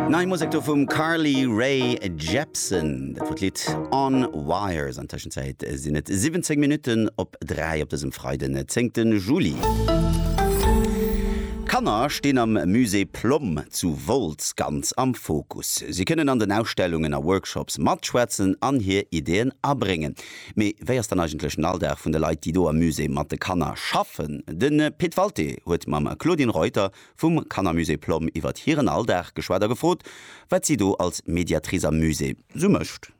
Nei Musek do vum Carly Rae Jepsen, dat wor d'Lidd On Wires. An Tëschenzäit sinn et 17 Minutten op 3 op dësem Freiden, 10. Juli. Kanner stinn am Musée Plomm zu Wolz ganz am Fokus. Si kënnen an den Ausstellungen a Workshops matschwätzen an hir Ideeën abréngen. Mee wéi ass dann eigentlech den Alldag vun de Leit, déi do am Musée mat de Kanner schaffen? De Pit Walté huet mam Claudine Reuter Vum Kannermusée Plomm iwwert hiren Alldag geschwat a gefrot, wat si do als Mediatrice am Musée sou mécht.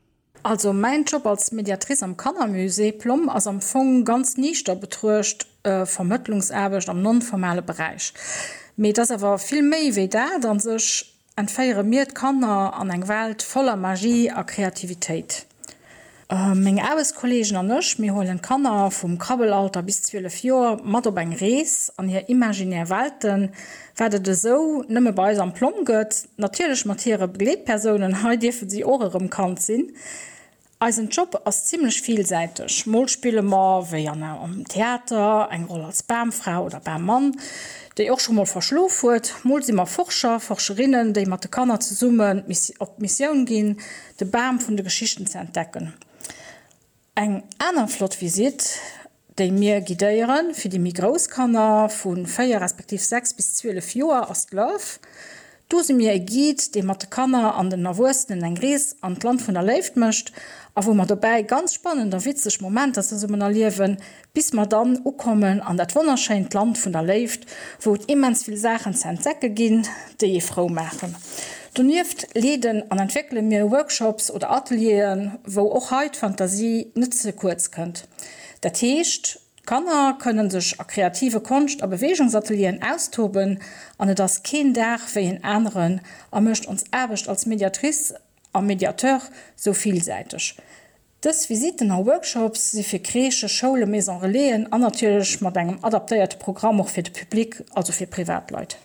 Also mäin Job als Mediatrice am Kannermusée Plomm ass am Fong ganz niichter betruecht Vermëttlungsaarbecht am non-formale Beräich. Mee et ass awer vill méi wéi dat a sech. Entféiere mir d'Kanner an eng Welt voller Magie a Kreativitéit? Meng Aarbechtskolleegen an ech, mir huelen d'Kanner vum Krabbelalter bis 12 Joer mat op eng Rees an hir imaginär Welten, wat et esou nëmme bei eis am Plom gëtt, natierlech mat hire Begleetpersounen, hei dierfe si och erëm Kand sinn. Eisen Job ass zimlech villsäiteg, mol spille mer, wéi an am Theater, eng Roll als Bamfra oder Bammann, déi och scho mol verschlof huet, mol si mer Forscher, Forscherinnen, déi mat de Kanner zesummen op d'Missioun ginn, de Bam vun de Geschichten ze entdecken. Eng aner flott Visitt déi mir guidéieren. Fir déi méi grouss Kanner, vu 4 respektiv 6 bis 12 Joer, ass d'Love. Do si mir e Guide, dee mat de Kanner an den Erwuessenen eng Rees an d'Land vun der Léift mécht a wou mer dobäi ganz spannend a witzeg Momenter zesummen erliewen, bis mer dann ukommen an dat wonnerschéint Land vun der Léift, wou et immens vill Saachen ze entdecke ginn, déi ee frou maachen. Donieft leeden an entwéckele mir Workshops oder Atelieren, wou och hei d'Fantasie net ze kuerz kënnt. Dat heescht, d'Kanner kënne sech a kreative Konscht a Beweegungsatelieren austoben an et ass keen Dag wéi en aneren a mécht ons Aarbecht als Mediatrice a Mediateur sou villsäiteg. Dës Visitten a Workshops si fir Crèchen, Schoulen, Maison-relaisen an natierlech mat engem adaptéierte Programm och fir de Public, also fir Privatleit.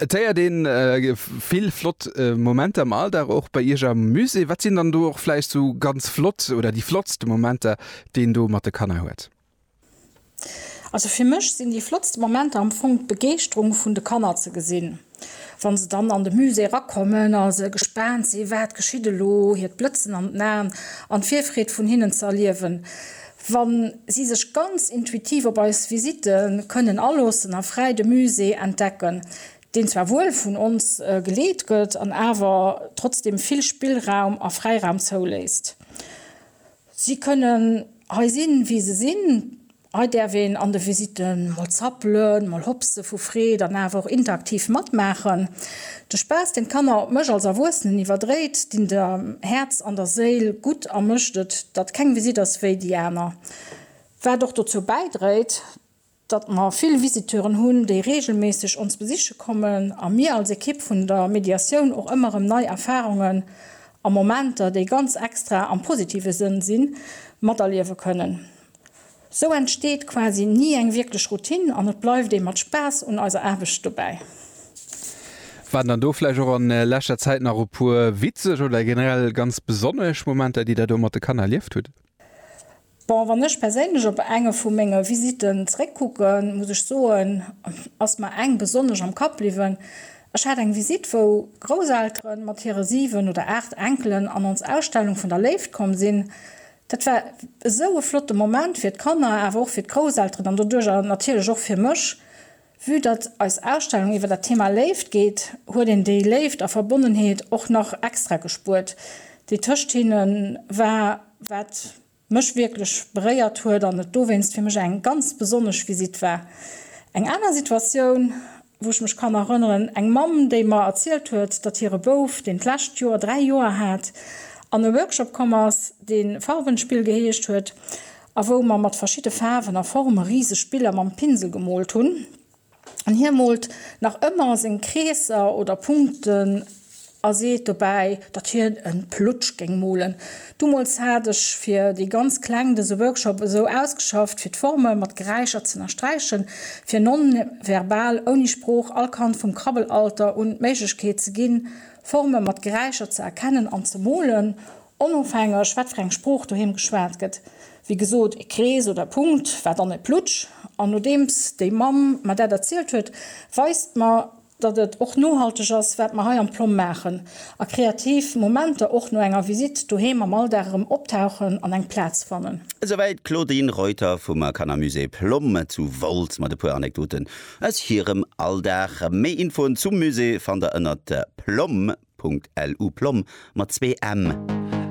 Et héiert een vill flott Momenter am Alldag och bei Iech am Musée. Wat sinn dann do och vläicht sou ganz flott oder déi flottste Momenter, déi een do mat de Kanner huet? Also fir mech sinn déi flottste Momenter am Fong d'Begeeschterung vun de Kanner ze gesinn, wa se dann an de Musée erakommen a se gespaant sinn, wat geschitt elo, hiert Blëtzen an den Aen an d'Virfreed vun hinnen ze erliewen. Wa si sech ganz intuitiv op eis Visite kënnen aloossen a fräi de Musée entdecken, deen zwar wuel vun ons geleet gëtt an awer trotzdeem vill Spillraum a Fräiraum zouléisst. Si kënnen hei sinn, wéi se sinn. Hei däerf een an de Visite mol zappelen, mol hopse vu Freed an awer och interaktiv matmaachen. De Spaass, deen d'Kanner op mech als Erwuessenen iwwerdréit, dinn der Häerz an der Séil gutt a mécht et, datt keng Visitt ass wéi déi aner. Wat och dozou bäidréit, datt mer vill Visiteuren hunn, déi reegelméisseg ons besiche kommen a mir als Ekipp vun der Mediatioun och ëmmer erëm nei Erfarungen a Momenter, déi ganz extra am positive Sënn sinn, materliewe kënnen. Sou entsteet quasi ni eng wierklech Routine an et bleift ee mat Spaass un eiser Aarbecht dobäi. Waren dann do vläicht och an leschter Zäit nach e puer witzeg oder generell ganz besonnesch Momenter, déi der do mat de Kanner erlieft hutt? Bon, wann ech perséinlech op enge vu menge Visitten zeréckkucken, muss ech soen, ass mer eng besonnesch am Kapp bliwwen. Ech hat eng Visite, wou Grousseltere mat hire 7 oder 8 Enkelen an ons Ausstellung vun der Léift komm sinn. Dat war esou e flotte Moment fir d'Kanner, awer och fir d'Grousselteren an doduerjer natierlech och fir mech. Vue datt eis Ausstellung iwwer dat Thema Léift geet, huet een déi Léift a Verbonnenheet och nach extra gespuert, déi tëscht hinne war, wat mech wierklech beréiert huet an et dowéinst fir mech eng ganz besonnesch Visitt war. Eng aner Situatioun. wou ech mech kann erënneren, eng Mamm, déi mer erzielt huet, datt hire Bouf, deen d'lescht Joer dräi Joer hat, an e Workshop komm ass, dee Farbenspiel geheescht huet a wou mer mat verschidde Faarwen a Forme riseg Biller mam Pinsel gemoolt hunn. An hie moolt nach ëmmer seng Kreesser oder Punkten. A seet dobäi, datt hien en Plutsch géing molen. Dumools hat ech fir déi ganz Kleng dëse Workshop esou ausgeschafft, fir d'Forme mat Geräischer z'ënnersträichen, fir non-verbal, ouni Sprooch, all Kand vum Krabbelalter un d'Méiglechkeet ze ginn, Forme mat Geräischer ze erkennen an ze molen, onofhängeg wat fir eng Sprooch doheem geschwat gëtt, wéi gesot, e Krees oder e Punkt war dann e Plutsch. An nodeems déi Mamm mer dat erzielt huet, weist mer datt et och nohalteg ass, wat mer hei am Plomm maachen, a kreativ Momenter och no enger Visitt doheem am Alldag erëm optauchen an eng Plaz fannen. Esouwäit d'Claudine Reuter vum Kanner Musée Plomm zu Wolz mat e puer Anekdoten aus hirem Alldag. Méi Infoen zum Musée fannt der ënnert plomm.lu, Plomm mat zwee m.